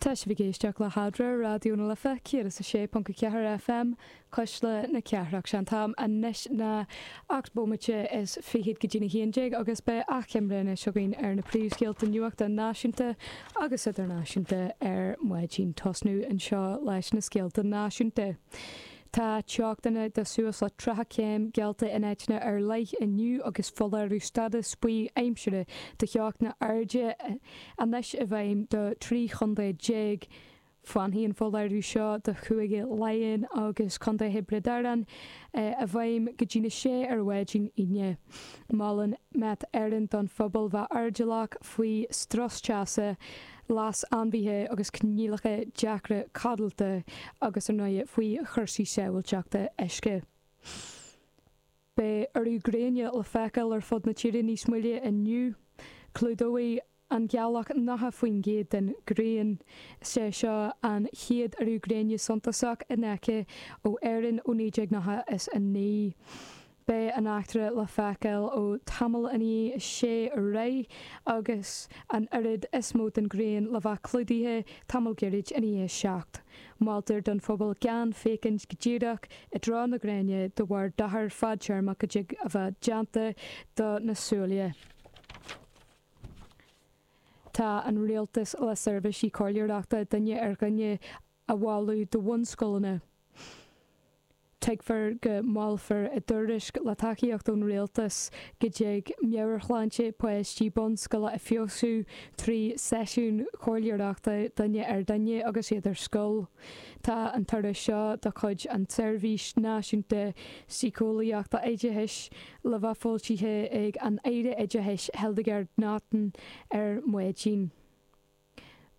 Tá sibh ag éisteacht le hAdhradh ar Raidió na Life 106.4 FM, Cuisle na Cathrach. Sé an t-am anois ná ocht bómaite is fichead go dtí'n haon déag agus beidh achoimre anois againn ar na príomhscéalta nuachta náisiúnta agus idirnáisiúnta ar maidin. Tosnú anseo leis na scéalta náisiúnta. Tá teochtanna de suas le 30 céim geallta in áiteanna ar leith inniu agus foláireamh stádas buí aimsire de theochtanna arda anois i bhfeidhm do 13 chontae. Fanfaidh an foláireamh seo do Chúige Laighean agus Contae Thiobraid Árann i bhfeidhm go dtí'n 6 ar mhaidin Aoine. Molann Met Éireann don phobal bheith airdeallach faoi strus teasa. leas ainmhithe agus coinníollacha deacra codlata agus ar ndóigh faoi chursaí sábháilteachta uisce. Beidh urú gréine le feiceáil ar fud na tíre níos moille inniu. Clúdóidh an ghealach 90% den ghrian. Is é seo an chéad urú gréine suntasach in aice ó Éirinn ó 1999. Beidh an eachtra le feiceáil ó tamall i ndiaidh a sé ar aghaidh agus an oiread is mó den ghrian le bheith clúdaithe tamall gairid i ndiaidh a 7. Moltar don phobal gan féachaint go díreach i dtreo na gréine de bharr dochar fadtéarmach a dtig a bheith déanta do na súile. Tá an rialtas le seirbhísí comhairleoireachta duine ar dhuine a. a mholadh do bhunscoileanna. Tuigtear go molfar i dtuairisc, le tacaíocht ón Rialtas, go dtig meabhairshláinte páistí bunscoile a fheabhsú trí seisiúin chomhairleoireachta duine ar dhuine agus iad ar scoil. Tá an tuairisc seo de chuid an tSeirbhís Náisiúnta Síceolaíochta Oideachais le bheith foilsithe ag an Aire Oideachais Hildegarde Naughton ar maidin.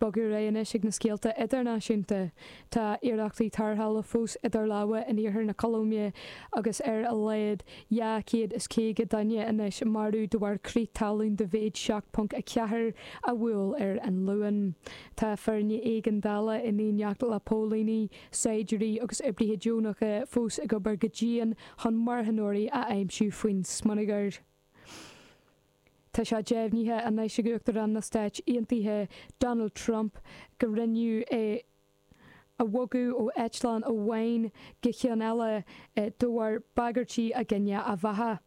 Bogadh ar aghaidh anois ag na scéalta idirnáisiúnta. Tá iarrachtaí tarrthála fós idir lámha in iarthar na Colóime agus ar a laghad 250 duine anois marbh de bharr crith talún de mhéid 7.4 a bhuail ar an Luan. Tá foirne éigeandála in éineacht le póilíní, saighdiúirí agus oibrithe deonacha fós ag obair go dian chun marthanóirí a aimsiú faoin smionagar. Tá sé deimhnithe anois ag Uachtarán na Stáit Aontaithe Donald Trump go rinneadh é a bhogadh ó eitleán amháin go ceann eile de bharr bagairtí i gcoinne a bheatha.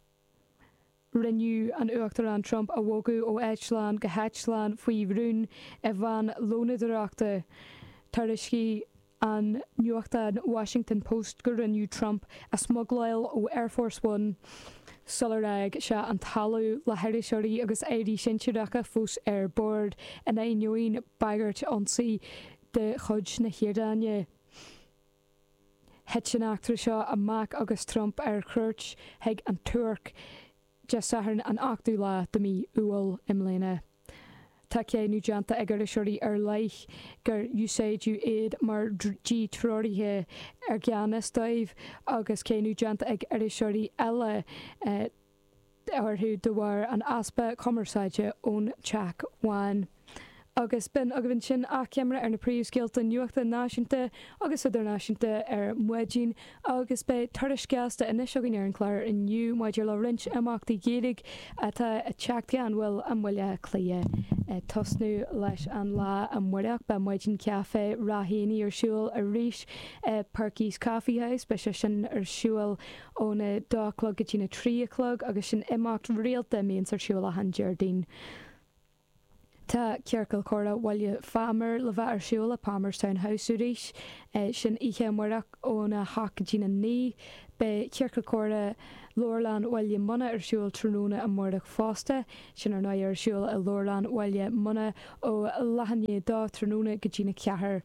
Rinneadh an tUachtarán Trump a bhogadh ó eitleán go heitleán faoi rún i veain lónadóireachta, tar éis go. an nuachtán Washington Post go rinneadh Trump a smugláil ó Air Force One sular fhág sé an talamh, le hiriseoirí agus airí sinsearacha fós ar bord, in ainneoin bagairt ionsaí de chuid na hIaráine. Thit an eachtra seo amach agus Trump ar chuairt chuig an Tuirc Dé Sathairn an ochtú lá de mhí Iúil i mbliana. Tá cáineadh déanta ag iriseoirí ar leith gur úsáideadh iad mar díthreoraithe i gan fhios dóibh agus cáineadh déanta ag iriseoirí eile orthu de bharr an easpa cumarsáide ón Teach Bhán. agus b'in agaibh ansin achoimre ar na príomhscéalta nuachta náisiúnta agus idirnáisiúnta ar maidin agus beidh tuairisc ghasta anois againn ar an gclár inniu maidir le roinnt imeachtaí Gaeilge atá ag teacht gan mhoill i mBaile Átha Cliath. Ag tosnú leis an lá amárach, beidh Maidin Caife Ráth Éanaigh ar siúl arís i Perky's Coffee House, beidh sé sin ar siúl óna dó a chlog go dtína trí a chlog agus sin imeacht rialta a mbíonns ar siúl achan Déardaoin. Tá Ciorcal Comhrá Bhaile Phámar le bheith ar siúl i Palmerstown House arís, sin oíche amáireach ón 8 go dtí'n 9. Beidh Ciorcal Comhrá Leabharlann Bhaile Munna ar siúl tráthnóna amáireach fosta, sin ar ndóigh ar siúl i Leabharlann Bhaile Munna ó leath i ndiaidh a dó tráthnóna go dtí'n 4.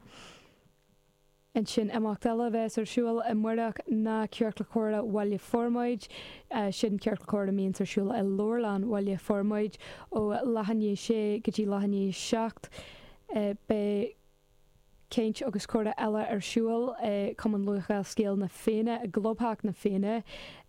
ansin imeacht eile a bheas ar siúl amárach ná Ciorcal Comhrá Bhaile Formaid, sin ciorcal comhrá a mbíonns ar siúl i Leabharlann Bhaile Formaid ó leath i ndiaidh a 6 go dtí leath i ndiaidh a 7. Beidh Caint agus Comhrá eile ar siúl i Cumann Lúthchleas Gael na Féinne i gClubtheach na Féinne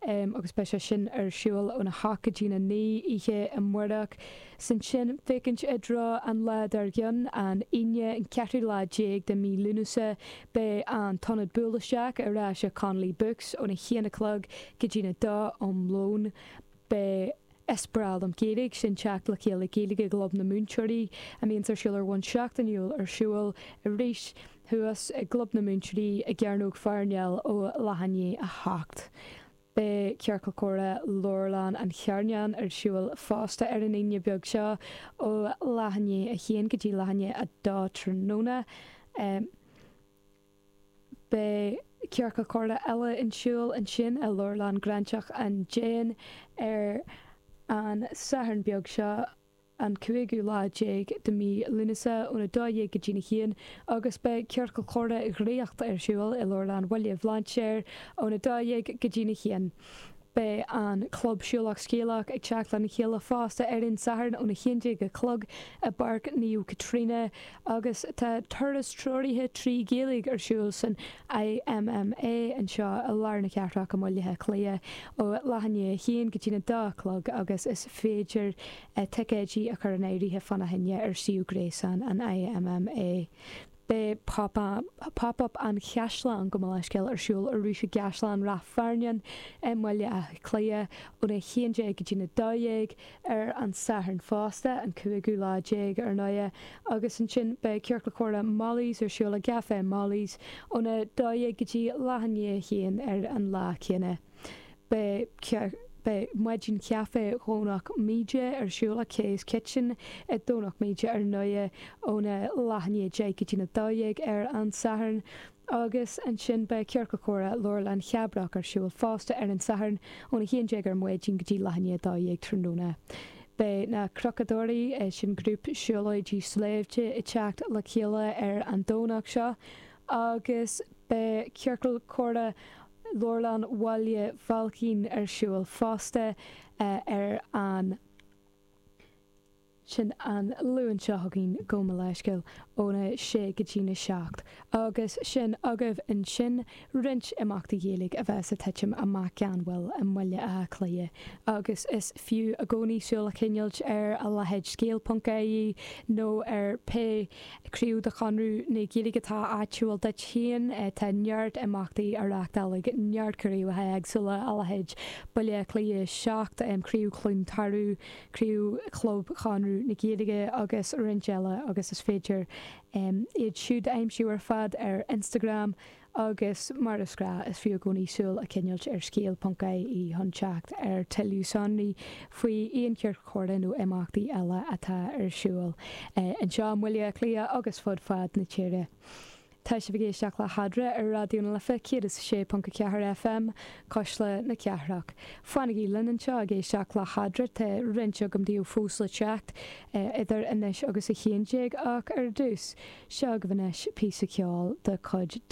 agus beidh sé sin ar siúl óna hocht go dtína naoi oíche amárach. 'S ansin féachaint i dtreo an lá dár gcionn, an Aoine, an ceathrú lá déag de mhí Lúnasa, beidh an tIonad Buail Isteach ar ais i Connolly Books óna haon a chlog go dtí'n a dó um lón. Beidh Is breá liom Gaeilge sin teacht le chéile Gaeilge i gClub na Múinteoirí a mbíonns ar siúl ar bhonn seachtainiúil ar siúl arís thuas i gClub na Múinteoirí i gCearnóg Pharnell ó leath i ndiaidh a hocht Beidh Ciorcal Comhrá Leabharlann an Charnáin ar siúl fosta ar an Aoine beag seo, ó leath i ndiaidh a 1 go dtí leath i ndiaidh a 2 tráthnóna. Beidh Ciorcal Comhrá eile ar siúl ansin i Leabharlann Ghráinseach an Déin ar an Satharn beag seo, an cúigiú lá déag de mhí Lúnasa ón 12 go dtí'n 1 agus beidh Ciorcal Comhrá Dhraíocht ar siúl i Leabharlann Bhaile Bhlainséir ón 12 go dtí'n 1. Beidh an Club Siúlach Scéalach ag teacht lena chéile fosta ar an Satharn ón 11 a chlog i bPáirc Naomh Caitríona agus tá turas treoraithe trí Ghaeilge ar siúl san IMMA anseo i lár na cathrach i mBaile Átha Cliath ó leath i ndiaidh a haon go dtína dó a chlog agus is féidir ticéidí a chur in áirithe fána choinne ar suíomh gréasáin an IMMA. Beidh Pop Up an Chaisleáin gabh mo leithscéal ar siúl arís i gCaisleán Ráth Fearnáin i mBaile Átha Cliath ón 11 go dtína dó dhéag, ar an Satharn fosta, an cúigiú lá déag, ar ndóighe, agus ansin beidh Ciorcal Comhrá Molly's ar siúl i gCafé Molly's óna dó dhéag go dtí leath i ndiaidh a haon ar an lá céanna. Beidh Maidin Chaife Dhomhnach Míde ar siúl ag Kay's Kitchen i Domhnach Míde ar ndóighe, óna leath i ndiaidh a deich go dtína dó dhéag ar an Satharn, Agus ansin beidh Ciorcal Comhrá Leabharlann Chabrach ar siúl fosta ar an Satharn ón 11 ar maidin go dtí leath i ndiaidh a 12 tráthnóna. Beidh Na Cnocadóirí, sin grúpa siúlóidí sléibhte ag teacht le chéile ar an Domhnach seo agus beidh Ciorcal Comhrá Leabharlann Bhaile Bhailcín ar siúl fosta ar an Sin an Luan seo chugainn, gabh mo leithscéal, óna sé go dtí na seacht, agus sin agaibh ansin roinnt imeachtaí Gaeilge a bheas ag titim amach gan mhoill i mBaile Átha Cliath, agus is fiú i gcónaí súil a choinneáilt ar a leithéid scéal ponc ie nó ar pé craobh de Chonradh na Gaeilge atá áitiúil duit féin. Tá neart imeachtaí á reachtáil ag neart craobhacha éagsúla, a leithéid Baile Átha Cliath 7, Craobh Chluain Tarbh, craobh Chlub Chonradh na Gaeilge agus roinnt eile agus is féidir iad siúd a aimsiú ar fad ar Instagram agus mar is gnáth is fiú i gcónaí súil a choinneáilt ar scéal ponc ie chun teacht ar tuilleadh sonraí faoi aon chiorcal comhrá nó imeachtaí eile atá ar siúl anseo i mBaile Átha Cliath agus fud fad na tíre. Tá sibh ag éisteacht le hEadra ar Raidió na Life 106.4 FM, Cuisle na Cathrach. Fanaigí linn anseo ag éisteacht le hEadra, tá roinnt agam daoibh fós le teacht, idir anois agus a haon déag, ach ar dtús, seo agaibh anois píosa ceoil de chuid The.